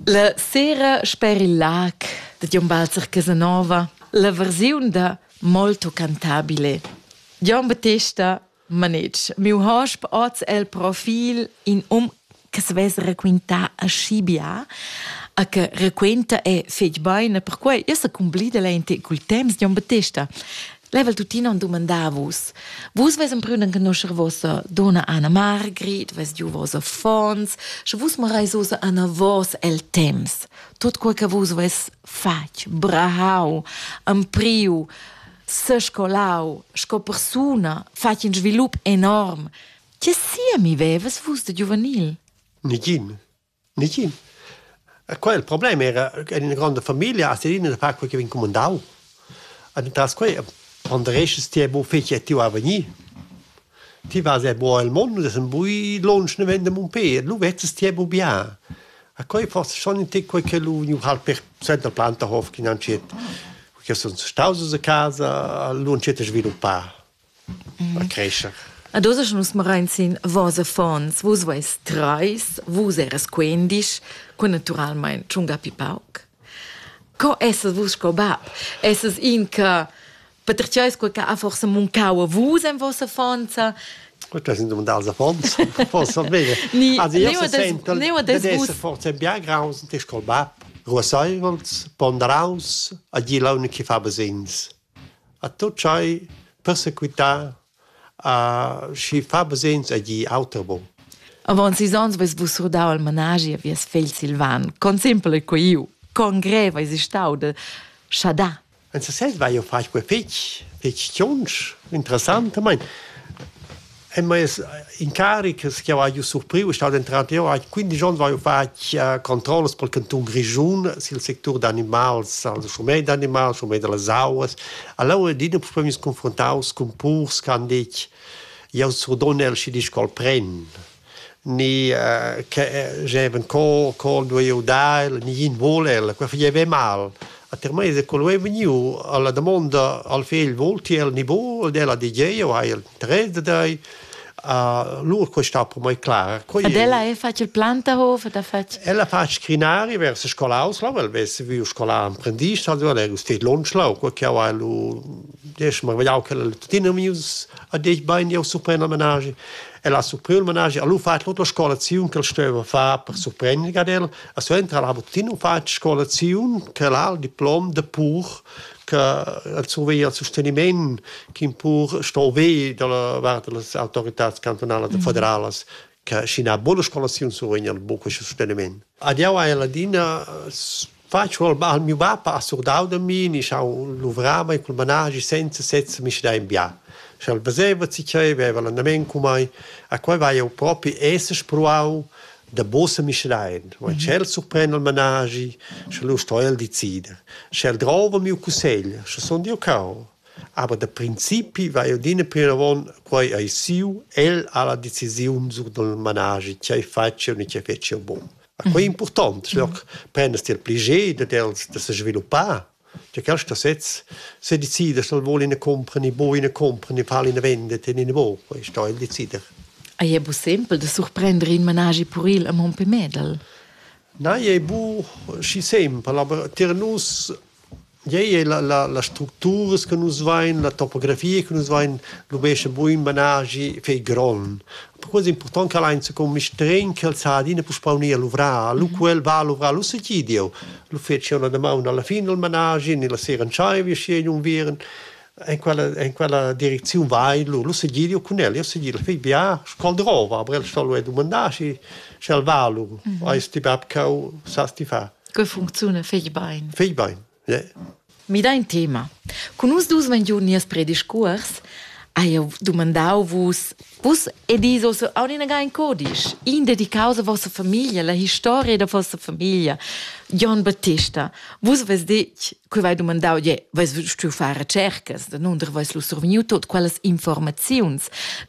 La sera sper il lag da Gion Walter Casanova, la versiun da Molto cantabile. Gion Battesta Manetsch, miu hosp oz el profil in um che se vess raquintà aschi bia, a che raquenta è fetg beine, perquai io sa cumblida lente cul temps Gion Battesta. Level tuttina on dumandà vus. Vus ves emprüden conoscer vossa donna Anna Margrit, ves giu voss affons, sche vus marais osa Anna vos el temps. Tot quel che vus ves fatg, brahau, ampriu, sescolau, sco persuna, fatg in svilup enorm. Che sia mi veves vus de giuvenil? Nigin. Nicin. Quel il problem era en ina gronda famiglia a Serina da far quei che vegn cumandau. Ed entras quei pondereschas ti buca fetg ti va vegnir. Ti vas er buca el mond, das ein bui lunsch naven da Mumpé, lu vezzas ti buca bien. E quei forse schon in tec quei che lu vegniu halt per suenter Plantahof che han scet, che sun staus a casa, lu han scet a sviluppar. creescher. Ad oz nus marain sin vos affons, vus veis treis, vus eras quendisch, cu naturalmein tschunga pi pauc. Co essas vus sco bab? Essas in che patertgeis quei che ha forsa muncau a vus en vossa affonza? Das sind dumandar als affons, forsa bene. Ni, also io se sento dad esser forse bien graus und sco bab. Ruasseivels, ponderaus, a dir l'unica che fa besins. A tut tschai persequitar a schi fa basegns a gnir auter bon. Avaunt sis ons vais vus surdau al managi a vies fegl Silvan. Con simpel ei quei iu! Con grev eis ei stau de schadar. En sesez vai jeu far quei fetg, fetg tschonsch, interessant. Mein, En meis incarics che ho haiu surpriu è stat entrar jeu ha quindisch onns haiu fatg eh, controllas pel cantun Grischun sil sectur d'animals, al schurmet d'animals, schurmet da las auas. Allura adina puspei meis confruntaus cun purs che han detg jau surdonel schi disch col pren ni eh, che eh, geben co co duei eu dar el, ni yin vole el, quei fageva mal. A termeis è quel vegniu alla damonda al fegl volti el ni buca ed ella di tgei jeu hai interess da tei. Lur questa per mai clara. Quei Ed ella è fatg il Plantahof da fatg. Ella fa scrinari vers scolaus lau, el vess viu scola emprendist, ha dua legus teit lunch lau, quei che ha lu diesch mar vegliau che tuttina mius a detg bein jau surprend al menage. El ha surpriu il menage, ha lu fatg l'otra scolaziun che el steva far per surprendere ad el, E suenter ha tuttina fatg scolaziun che l'ha il diplom de pur che el surveglia il sosteniment che pur sto ve dalla vart delle autoritats cantonalas e federalas che scina buona scolaziun survegna buca questo sosteniment. Ad jau hai ladina faccio al, al mio papà ha surdau da mi, ni schau luvrava in cul managi senza sezza mi da in bia. Schel veseva si che aveva l'andament con mai, a quei vai eu propi esser proau Davos Mischrein, wo in tschel surpren il managi, sche lu sto el decida. Sche el drova miu cussegl, sche sun jeu cau. Aber da principi va jeu adina plinavon, quei ei siu, el ha la decisiun sur dal managi, tgei fatsch jeu ni tgei fetsch jeu bun. A quei è impurtant, sche prendest ti il pli ged dad els da sesviluppar Cha quaista sez sedecidas dal voul ina cumpra ni buca ina cumpra ni far ina vendita in ina buob e sto el decider. Ei ei bu sempel da surprender in managi puril a Monte Medel. Na, ei bu schi sempel, aber tier nus ei ei la, la, las structuras che nus vein, la topografia che nus vein, lubescha buin managi fei gron. Per quello è important che allein secondo mi stren che el sa adina puspau ni a luvrar, lu quel va a luvrar, lu se gidiu. lu fetsch io la damaun alla fin del managi ni la sera entscheivi schi in unviern en quella en quella direcziun vai lu lu segir io cun el io segir fei bia scol drova aber el stollo e domandar schi schel va lu mhm. eis ti bab cau sas ti fa che funziona fei bein fei bein ja Mida in tema. Cun nus dus vein giu nies prediscuors, ha jeu dumandau vus. Vus edis oz aunc inaga in codisch, in dedicaus a vossa famiglia, la historia da vossa famiglia. Jon Battista, vus veis detg, quei vai dumandau, je, veis stuiu far recercas, da nunder veis lu survegniu tot quellas informaziuns.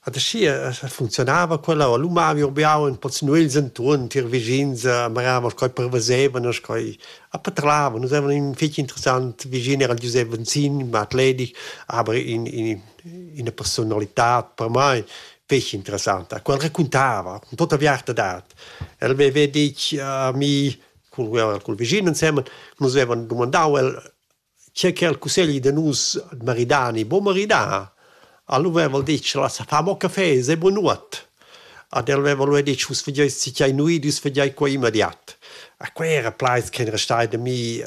Ad aschia funzionava quella u lu mavi urbiau in pocc nuegls entuorn tier vischins a maravan sco pervesevan e sco a patravan. Nus havevan in fetg interessant vischin, era Giusep Venzin, in atletics, aber in, in, ina personalitad per mei fetg interessanta, quel raccontava cun tutta viartadad. El veva detg a mi cul, cul vischin ensemen, nus vevan dumandau el Schi che al cussegli da nus maridar e buc maridar, alura va'l detg lassa far amò cafè, sai buon'uot. Ad el veva alura detg vus fageis sicchai nuit, vus fageis quai immediat. A quai era plaids ch'ein restai da mi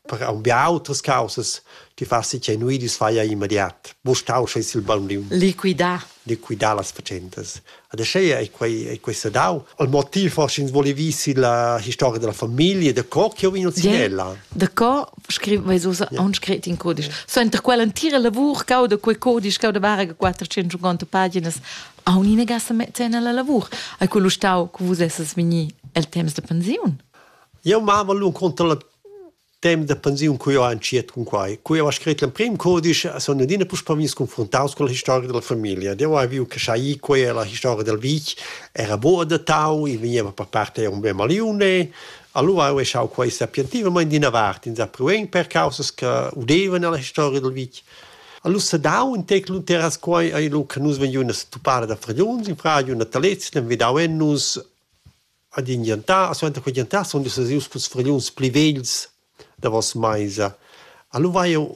per aunc bia autras caussas. Ti far sicchai nuit, vus fai immediat. Buc stau sche il bambin. Liquidar. Liquidar las fatschentas. Ed aschia ei quei, ei quei sedau. Il motiv forsch'ins volevi si la historia della famiglia, da co che vegn Cinella. Da co scriveva ussa yeah. aunc scret in codisch. So enter quell'entira lavur cau da quei codisch cau da varga 450 paginas a unina ga se metter nella lavur. Hai quello stau che vus esses vegni el temps de pensiun? Io mama l'un conta la temps da pensiun cui ho entschiet cun quai. Cui ho scrit l'emprim codice sun adina puspè vegnis confruntaus con la historia della famiglia. Deu hai viu che sai quei la historia del vitg era bo adattau, i vegneva per part eir un bel maliune. Allura ho echau quai sapientivamaing d'ina vart, insapruein per causas che udevan nella historia del vitg. Alura s'ha dau ün tec luteras quai ei lu che nus vegniun a se tuppar da fragliuns in fradiu natalets, l'han vedau en nus ad in giantar, a suenter quei giantar sun nus sesius culs fragliuns pli vegls davos meisa. Alura hai jeu